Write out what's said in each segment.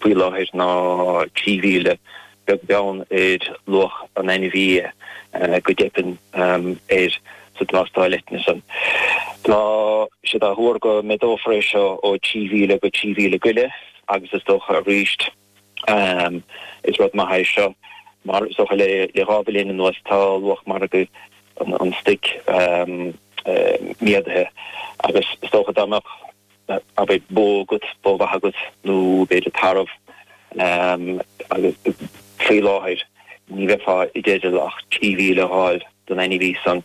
faoi láthair ná trí mhíle, beag beann ar luach an ainmhí, go dteipeann air sa tástáil eitinne san. Tá siad á thuar go méadófar é seo ó trí mhíle go trí mhíle go leith agus is dócha arís is rud maith é seo mar is dócha le dhá bhliain anuas tá luach margaidh an stuic méadaithe agus is dócha dá mbeadh abair bó agat, bó mhaith agat nó b'fhéidir tarbh agus faoi láthair ní bheifeá i dteideal ach trí mhíle a fháil don ainmhí san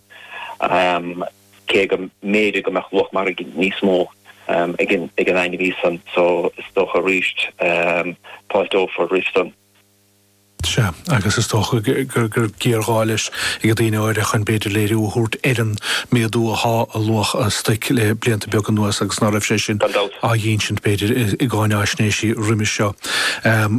cé go mb'fhéidir go mbeadh luach margaidh níos mó ag an ainmhí san so is dócha arís fáilteofar roimh san. Sea, agus is dócha go raibh géarghá leis ag daoine áirithe chun, b'fhéidir, léiriú a thabhairt ar an méadú athá i luach an stuic le blianta beaga anuas agus ná raibh sé sin Gan dabht. á dh'ínsint, b'fhéidir, i gcáináisnéisí roimis seo.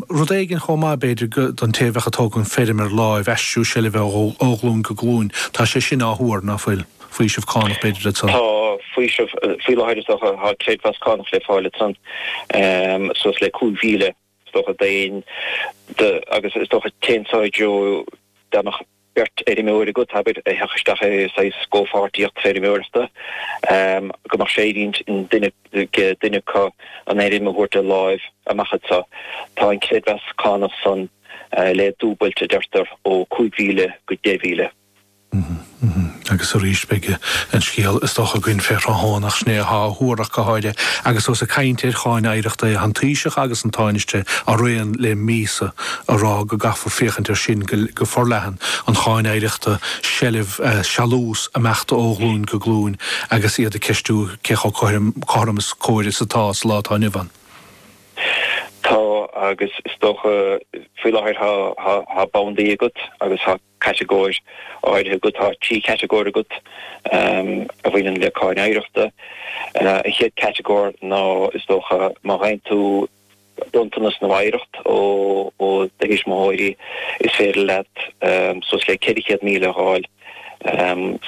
Rud éigin chomh maith, b'fhéidir, go, don té a bheadh ag tógaint feirm ar láimh, aistriú seilbhe ó ghlúin go glúin. Tá sé sin á thuar, ná fuil? Faoiseamh cánach, b'fhéidir, le Tá faoiseamh, faoi láthair is dócha, tá creidmheas cánach le fáil le suas le 5,000. Is dócha d'éinne, agus is dócha téann seo i dtreo, dá mbeadh beirt fheirmeoir agat, abair, a thiocfadh isteach i saghas comhpháirtíocht feirmeoireachta, go mbeadh sé ar intinn ag duine acu an fheirm a thabhairt de láimh amach anseo. Tá an creidmheas cánach san le dúbailt, a deirtear, ó 5,000 go 10,000. Agus arís beidh an scéal is dócha againn fé thráthnóna, ach sin é athá á thuar ach go háirithe agus ós ag caint ar cháin oidhreachta é. Tá an Taoiseach agus an Tánaiste araon le míosa á rá go gcaithfar féachaint ar sin go forleathan, an cháin oidhreachta, seilbh, sealús ag imeacht ó ghlúin go glúin agus iad ag ceistiú cé chomh cothrom is cóir is atá sa lá atá inniu ann. Tá agus is dócha faoi láthair tá bandaí agat agus tá. catagóir áirithe agat, tá trí chatagóir agat a bhaineann le Cáin Oidhreachta. An chéad catagóir ná, is dócha, má fhaigheann tú bronntanas nó oidhreacht ó do thuismitheoirí, is féidir leat suas le 400,000 a fháil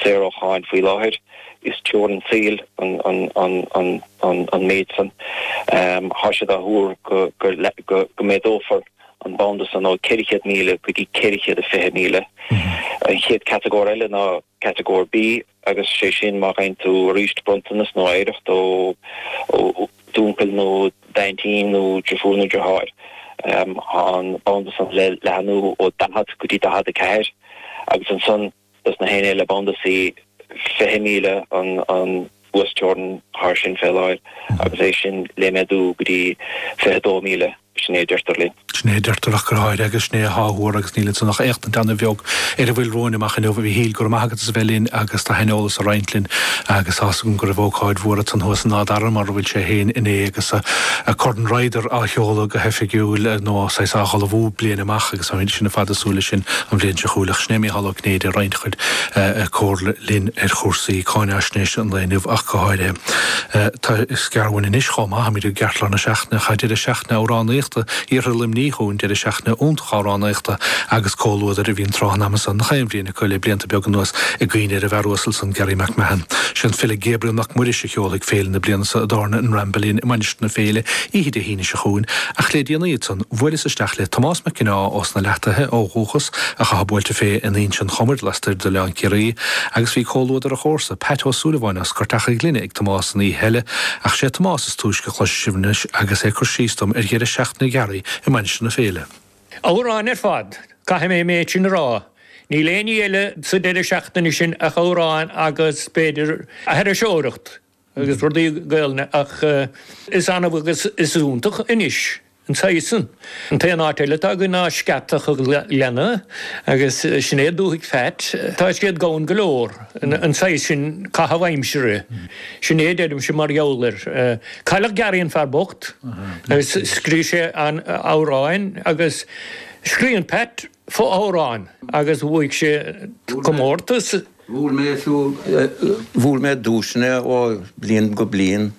saor ó cháin faoi láthair. Is teorainn saoil an méid san. Tá siad á thuar go méadófar. an banda san ó 400,000 go dtí 420,000. An chéad catagóir eile ná Catagóir B agus sé sin má fhaigheann tú arís bronntanas nó oidhreacht ó d'uncail nó d'aintín nó deirfiúr nó deartháir. Tá an banda san le leathnú ó 40 go dtí 44 agus ansan, Is na héinne le banda C 20 míle an an uasteorainn thar sin fé láthair agus é sin le méadú go dtí 22 míle. Sin é a deirtear linn. Sin é a deirtear ach go háirithe agus sin é atá á thuar agus níl ansin ach éachtaint ana bheag ar a bhfuil romhainn amach inniu. A Mhíchíl, go raibh maith agat as a bheith linn agus do shaineolas a roinnt linn agus tá a fhios agam go raibh ócáid mhór ansan thuas in Áth Dara mar a bhfuil sé féin inné agus Corn Ryder á sheoladh go hoifigiúil nó saghas á ullmhú bliain amach Sa mhéid sin, i bhfad is súil leis sin an bhliain seo chugainn. Ach sin é Mícheál Ó Cinnéide ag roinnt a chuid comhairle linn ar chúrsaí cáinfhaisnéise an lae inniu ach go háirithe. Tá Scarúin anois chomh maith, táimid i gceartlár na seachtaine, tá Deireadh Seachtaine Amhránaíochta Iarthar Luimnigh chugainn, Deireadh Seachtaine iontach Amhránaíochta agus Comhluadair a bhíonn tráth an ama san, gach aon bhliain a Gael le blianta beaga anuas i gcuimhne ar an bhfear uasal san, Garry McMahon. Sé an file Gabriel Mac Muiris a sheolfaidh féile na bliana seo i dtábhairne an Ramble Inn i Mainistir na Féile oíche Dé hAoine seo chugainn ach le déanaí ansan bhuaileas isteach le Tomás Mac Ginneá ós na Leathtaithe ó dhúchas ach atá buailte fé in Inse an Chomair lastoir d'Oileán Ciarraí agus bhí comhluadar a chomharsa, Peait Ó Súilleabháin as Scairteach an Ghlinne ag Tomás an oíche eile ach sé Tomás is túisce a chloisfidh sibh anois agus é ag cur síos dom ar dheireadh seachtaine Gharry i Mainistir na Féile. Amhráin ar fad, caithfidh mé an méid sin a rá. Níl aon ní eile sa deireadh seachtaine sin ach amhráin agus, b'fhéidir, aithriseoireacht agus rudaí Gaelainne ach is annamh agus is iontach anois an saghas san. An t-aon áit eile atá againn ná Scairteach a' Ghleanna agus sin é dúthaigh Pheait. Tá siad gann go leor, an saghas sin caitheamh aimsire. Sin é a deirimse mar gheall air. Cailleadh Garry an fear bocht agus scríobh sé an amhráin agus scríonn Pat fo-amhrán agus bhuaigh sé comórtas. Bhuaigh mé duaiseanna ó bhliain go bliain.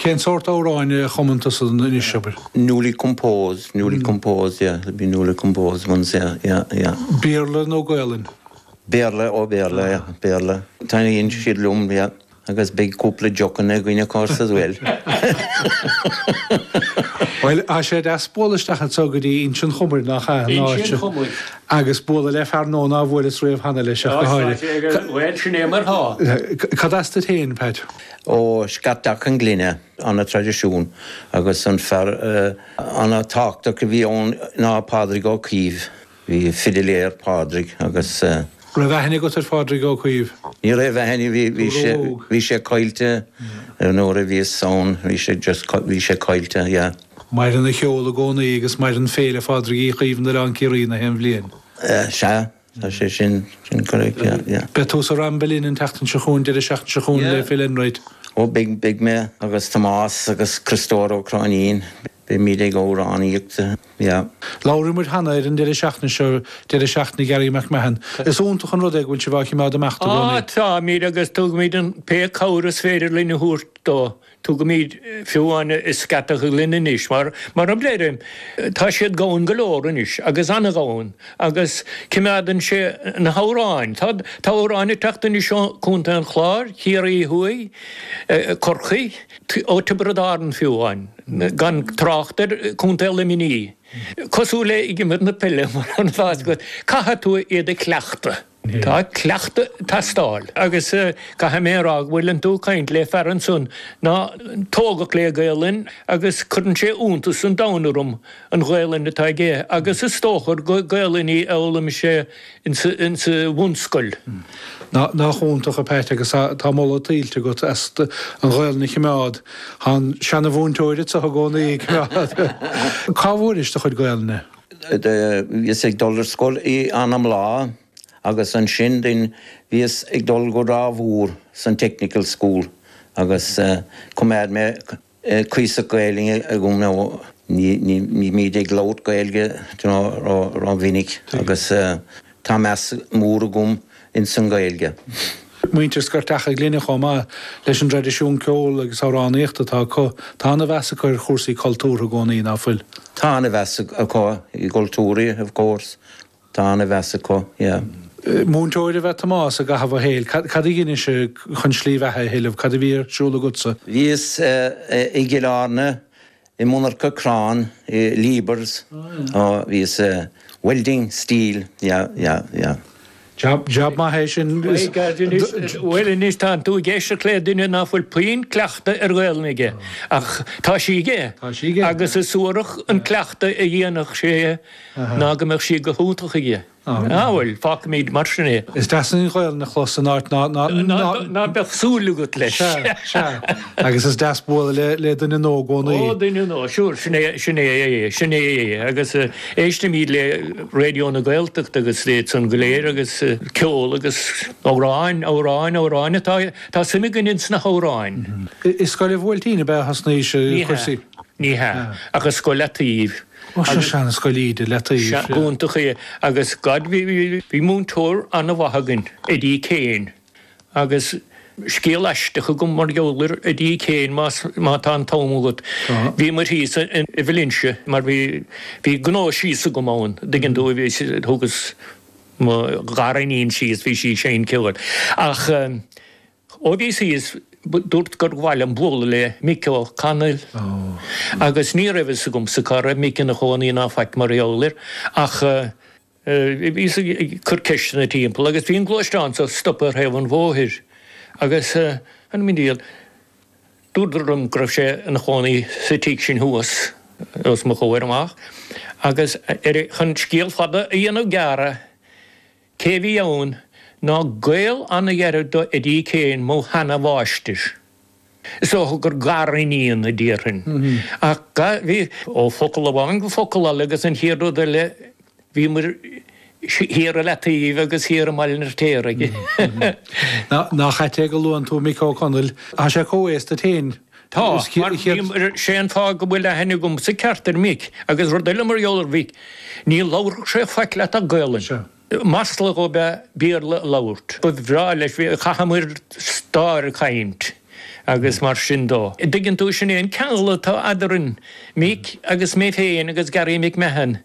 Cén sórt amhráin a chumann tusa anois, abair? Newly composed, newly composed, yeah, there'll be newly composed ones, yeah, yeah, yeah. Béarla nó Gaolainn? Béarla, oh Béarla, yeah, Béarla. Taitníonn siad liom, yeah. Agus beidh cúpla deochanna againn, of course, as well. Bhuel, tá sé deas bualadh isteach anseo go dtí Inse an Chomair, nach ea? An áit seo. Agus bualadh le fear nua nár bhuaileas riamh cheana leis ach go háirithe. Bhuel, sin é mar atá. Cad as duit féin, Pat? Ó, Scairteach an Ghlinne, ana traidisiún, agus an fear ana tábhachtach a bhí ann ná Pádraig Ó Caoimh. Bhí fidiléir, Pádraig, an raibh aithne agat ar Phádraig Ó Caoimh? Ní raibh aithne, bhí, bhí sé, bhí sé caillte nuair a bhíos ann, bhí sé just, bhí sé caillte, yeah. Maireann a cheol i gcónaí agus maireann Féile Phádraig Uí Chaoimh in Oileán Ciarraí gach aon bhliain. Sea, tá sé sin, sin correct, yeah, yeah. Beidh tú sa Ramble Inn an tseachtain seo chugainn, deireadh seachtaine seo chugainn le Phil Enright. Ó beidh, beidh mé agus Tomás agus Criostóir Ó Cróinín, beimid ag amhránaíocht. Yeah. Labhair muid cheana ar an deireadh seachtaine seo, deireadh seachtaine Gary McMahon. Is iontach an rud é go bhfuil sibh á chimeád ar imeacht i gcónaí. Á táimid agus tugaimid aon pé cabhair is féidir linn a thabhairt dó. Tugaimid fiú amháin scata linn anois mar, mar a deirim, tá siad gann go leor anois agus an-ghann agus cimeádann sé na hamhráin. Tá, tá amhráin ag teacht anois ó Chontae an Chláir, Ciarraí Thuaidh, Corcaigh. Tiobraid Árann fiú amháin, gan trácht ar Chontae Luimnigh, cosúil le himirt na peile, is dócha go gcaithfidh tú iad a chleachtadh. Tá cleachtadh ag teastáil agus caithfidh mé a rá go bhfuileann tú ag caint le fear ansan ná tógadh le Gaolainn agus cuireann sé iontas an domhain orm an Ghaolainn atá aige agus is dócha gur Gaolainn í a fhoghlaim sé in sa bhunscoil. Nach iontach, a Pat, agus tá moladh tuillte agat as an Ghaelainn a choimeád. Tá an seana-mhúinteoir so i gcónaí ag coimeád. Cá bhfuairis do chuid Gaelainne? Bhíos ag dul ar scoil i Anamlaagh agus ansin then bhíos ag dul go Ráth Mhór san technical school agus choimeád mé cuíosach Gaeilge agam, ní bhím ag labhairt Gaeilge ró mhinic agus tá meas mór agam ins an Ghaeilge. Muintir Scairteach an Ghlinne chomh maith leis an dtraidisiún ceoil agus amhránaíochta atá acu. Tá an-mheas acu ar chúrsaí cultúrtha i gcónaí, ná fuil? Tá an-mheas acu i gcultúrtha, of course. Tá an-mheas acu, yeah. Múinteoir ab ea Tomás i gcaitheamh a shaoil. Cad a dheinis chun slí bheatha a thuilleamh? Cad a bhí ar siúl agatsa? Bhíos i gCill Airne, i monarcha crann, i Liebherr's, bhíos welding steel, yeah, yeah, yeah. Jab, jab maith é sin. Bhuel anois tá tú ag éisteacht le duine nach bhfuil puinn cleachtadh ar Ghaolainn aige, ach tá sí aige agus is suarach an cleachtadh a dhéanfadh sé. ná go mbeadh sí go hiontach aige. Á, bhuel, fágfaimid mar sin é. Is deas an Ghaolainn a chlos in áit ná beadh súil agat leis. Sea, sea. Agus is deas bualadh le duine nua i gcónaí. Ó, duine nua, sure, sin é, sin é, sin é. Agus éistimid le Raidió na Gaeltachta agus iad san go léir agus ceol agus amhráin, amhráin, amhráin atá, tá suim againn ins na hamhráin. I scoil an Bhuailtín ab ea a thosnaís, a Thomáis? Ní hea. Ní hea. Ach i Scoil a' Taoibh. Ba seo seanscoil íde le taobh. gonta í agus gad. Bhí múinteoir an-mhaith againn, Eddie Kane, agus scéal aisteach agam mar gheall ar Eddie Kane más má tá an t-am agat. Tá. Bhíomar thíos i Valencia mar bhí bhí gnó thíos agam ann, dtuigeann tú, bhí thugas mo ghariníon síos, bhí sí ag seinm ceoil ach. Ó bhí sí is dúirt gur mhaith liom bualadh le Mick Ó Conaill agus ní raibh fhios agamsa cá raibh Mick ina chónaí ná faic mar gheall air ach bhíos ag cur ceisteanna timpeall agus bhí an gluaisteán seo stoptha ar thaobh an bhóthair agus anam an diail dúradar liom go raibh sé ina chónaí sa tigh sin thuas os mo chomhair amach agus ar chun scéal fada a dhéanamh gearr Cé a bhí ann ná gaol ana-ghairid do Eddie Kane, mo sheana-mháistir. Is dócha gur gariníon a déarfainn. Ach ga, bhí, ó focal amháin go focal eile agus an chéad rud eile bhíomair thiar i Leataoibh agus thiar i mBaile an Fhirtéaraigh. Nach ait é go luann tú Mick Ó Conaill, tá sé comhaosta leat féin. Tá, mar sé an fáth go bhfuil aithne agam sa cheart ar Mhick, agus rud eile mar gheall ar Mhick, ní labharfadh sé faic leat ach Gaelainn. Sea. Masla dhó ab ea Béarla a labhairt. Ba bhreá leis, chaitheamair stáir ag caint agus mar sin dó. An dtuigeann tú, sin é an ceangal atá eadrainn, Mick agus mé féin agus Garry McMahon,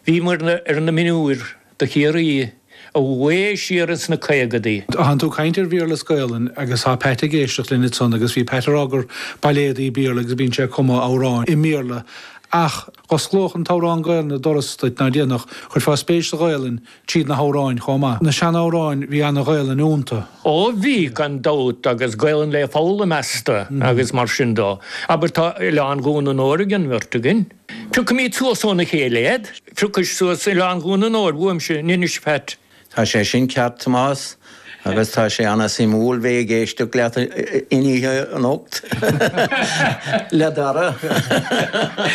bhíomair ar na mionúir. do Chiarraí, i bhfad siar ins na caogaidí. Tánn tú ag caint ar Bhéarla is Gaolainn agus tá Pat ag éisteacht linn ansan agus bhí Pat ag rá gur bailéidí Béarla agus bíonn sé ag cumadh amhráin i mBéarla ach dh'osclódh an t-amhrán Gaolainn doras duit ná déanfadh, chuirfeá spéis sa Ghaolainn tríd na hamhráin chomh maith. Na sean-amhráin, bhí ana Ghaolainn ionnta. Ó bhí, gan dabht agus Gaolainn le foghlaim asta agus mar sin dó. Abair tá Oileán Dhún an Óir ag an mbeirt againn. Piocaimid suas óna chéile iad. Phiocais suas Oileán Dhún an Óir uaimse anois Pat. Tá sé sin ceart, a Thomáis, agus tá sé an-suimiúil bheith ag éisteacht leat an oíche anocht le Dara.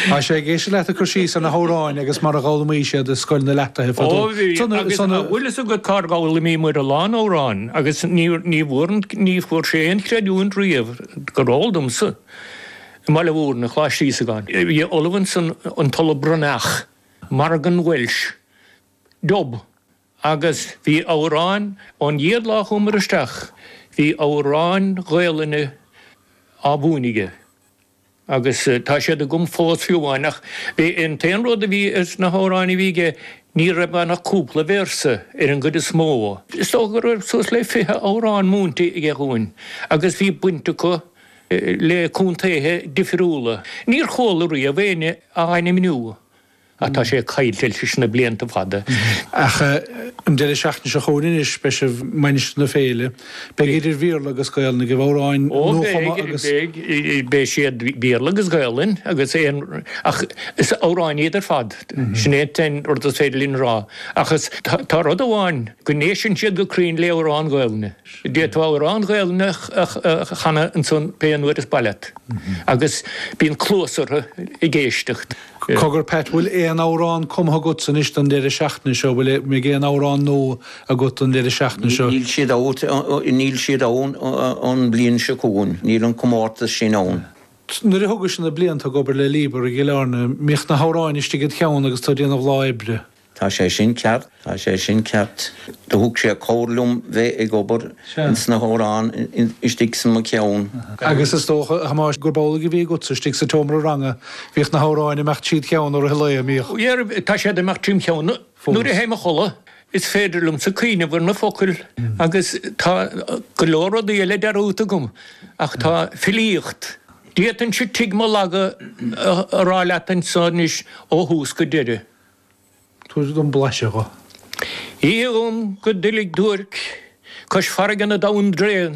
Tá sé ag éisteacht leat ag cur síos ar na hamhráin agus mar a dh'fhoghlaimís iad i Scoil na Leataoibhe fadó. Ó bhí, agus an bhfuil fhios agat cár fhoghlaimíomair a lán amhráin agus ní bhfuair sé aon chreidiúint riamh, gur eol domsa. i mBaile Bhuirne, Coláiste Íosagáin. Bhí ollamh ansan, an tOllamh Breathnach, Morgan Welsh, dob, agus bhí amhráin, ón gcéad lá a chuamar isteach, bhí amhráin Ghaelainne á mhúineadh aige. Agus tá siad agam fós fiú amháin, ach bhí, an t-aon rud a bhí sna hamhráin a bhí aige, ní raibh ann ach cúpla véarsa ar an gcuid is mó. Is dócha go raibh suas le fiche amhrán múinte aige dhúinn, agus bhí baint acu le contaetha difriúla. Níor chuala riamh éinne á ainmniú ach tá sé caillte leis na blianta fada. Ach an deireadh seachtaine seo chugainn anois beidh sibh i Mainistir na Féile. Beidh idir Bhéarla agus Gaolainn agaibh, amhráin nuachumtha agus. Ó beidh, beidh siad Béarla agus Gaolainn agus aon, ach is amhráin iad ar fad, sin é an rud is féidir linn a rá. Ach is, tá rud amháin, go n-éisteann siad go cruinn le amhráin Ghaolainne. D'fhéadfá amhrán Gaelainne a chanadh ansan pé an uair is maith leat, agus bíonn cluas orthu ag éisteacht. Cogar, Pat, bhfuil aon amhrán cumtha agatsa anois don deireadh seachtaine seo, bhfuil mbeidh aon amhrán nua agat don deireadh seachtaine seo? Níl siad out, níl siad ann an bhliain seo chugainn, níl an comórtas sin ann. Nuair a thugais-se na blianta ag obair le Liebherr i gCill Airne, mbíodh na hamhráin istigh id cheann agus tú ag déanamh lá oibre. Tá sé sin ceart, tá sé sin ceart. Do thug sé cabhair liom bheith ag obair is na h-amhráin istigh san mo cheann. Agus is dócha, a Thomáis, gurb amhlaidh a bhí agatsa istigh sa tseomra ranga, bhíodh na h-amhráin imeacht tríd cheann i rith an lae, an mbíodh? Bhíodh, tá siad imeacht trím cheann fós. Nuair a théim a chodladh, is féidir liomsa cuimhneamh ar na focail agus tá go leor rudaí eile dearúdta agam ach tá filíocht, d'fhéadfainnse Tigh Molaga a rá leat anso anois ó thús go deireadh. Tabhair dom blaiseadh dho. Oíche dhom go doiligh duairc cois farraige na dtonn dtréan,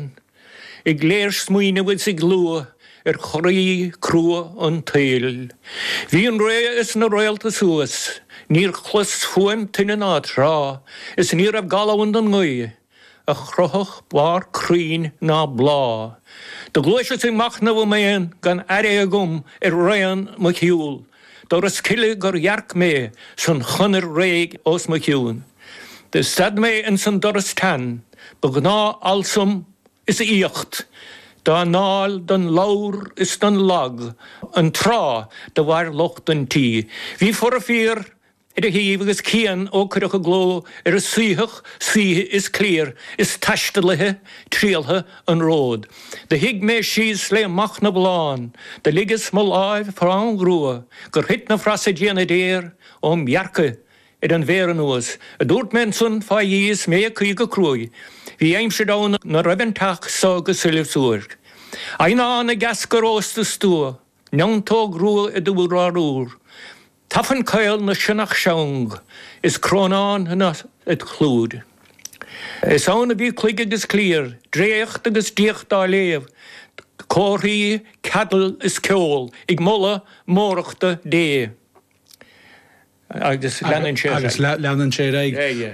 ag léirsmaoineamh is ag lua ar choraibh crua an tsaoil. Bhí an ré is na réalta suas, níor chlos fuaim tuinne ná trá, is ní raibh gal ann don ngaoith. a chroithfeadh barr crainn ná bláth do ghluaiseas ag machnamh im aon gan aire agam ar raon mo shiúl doras cille gur dhearc mé san chonair réidh os mo chionn do stad mé ins an doras tsean ba ghnáth almsa is aoíocht dá ndáil don lobhar is don lag an tráth do mhair lucht an tí bhí fora fiar ar a thaobh agus cian ó cuireadh i gcló ar a suíodh saoithe is cliar is taistealaithe triallta an róid do shuigh mé síos le machnamh lán do ligeas mo lámh fám ghrua gur thuit na frasa diana déar óm dhearcaibh ar an bhféar anuas a dúirt mé ansan fá dhíth is mé ag caoi go cruaidh bhí aimsir ann na raibh an teach so go soilbh suairc eidhneán ag eascar ós do stua neantóg rua id urlár úr. Tafann caol na sionnach seang is crónán na clúid. Is ann a bhí cloig agus cliar, dréacht agus diacht á léamh, córaí, ceadal is ceol ag moladh mórdhachta Dé. Agus leanann sé ar aghaidh.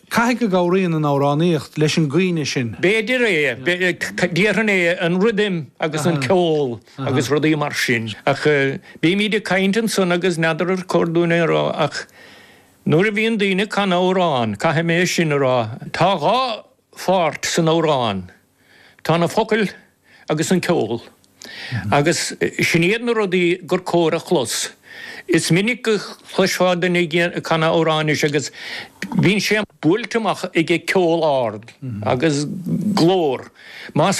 Caithfidh go gcabhraíonn an amhránaíocht leis an gcuimhne sin. B'fhéidir é. Déarfainn é, an rithim agus an ceol agus rudaí mar sin. Ach bímid ag caint ansan agus n'fheadar ar chóir dúinn é a rá ach nuair a bhíonn daoine ag canadh amhrán, caithfidh mé é sin a rá, tá dhá pháirt san amhrán, Tá na focail agus an ceol, agus sin iad na rudaí gur chóir a chlos. Is minic a chloisfeá duine ag canadh amhráin anois agus bíonn sé buailte amach aige ceol ard agus glór. Más.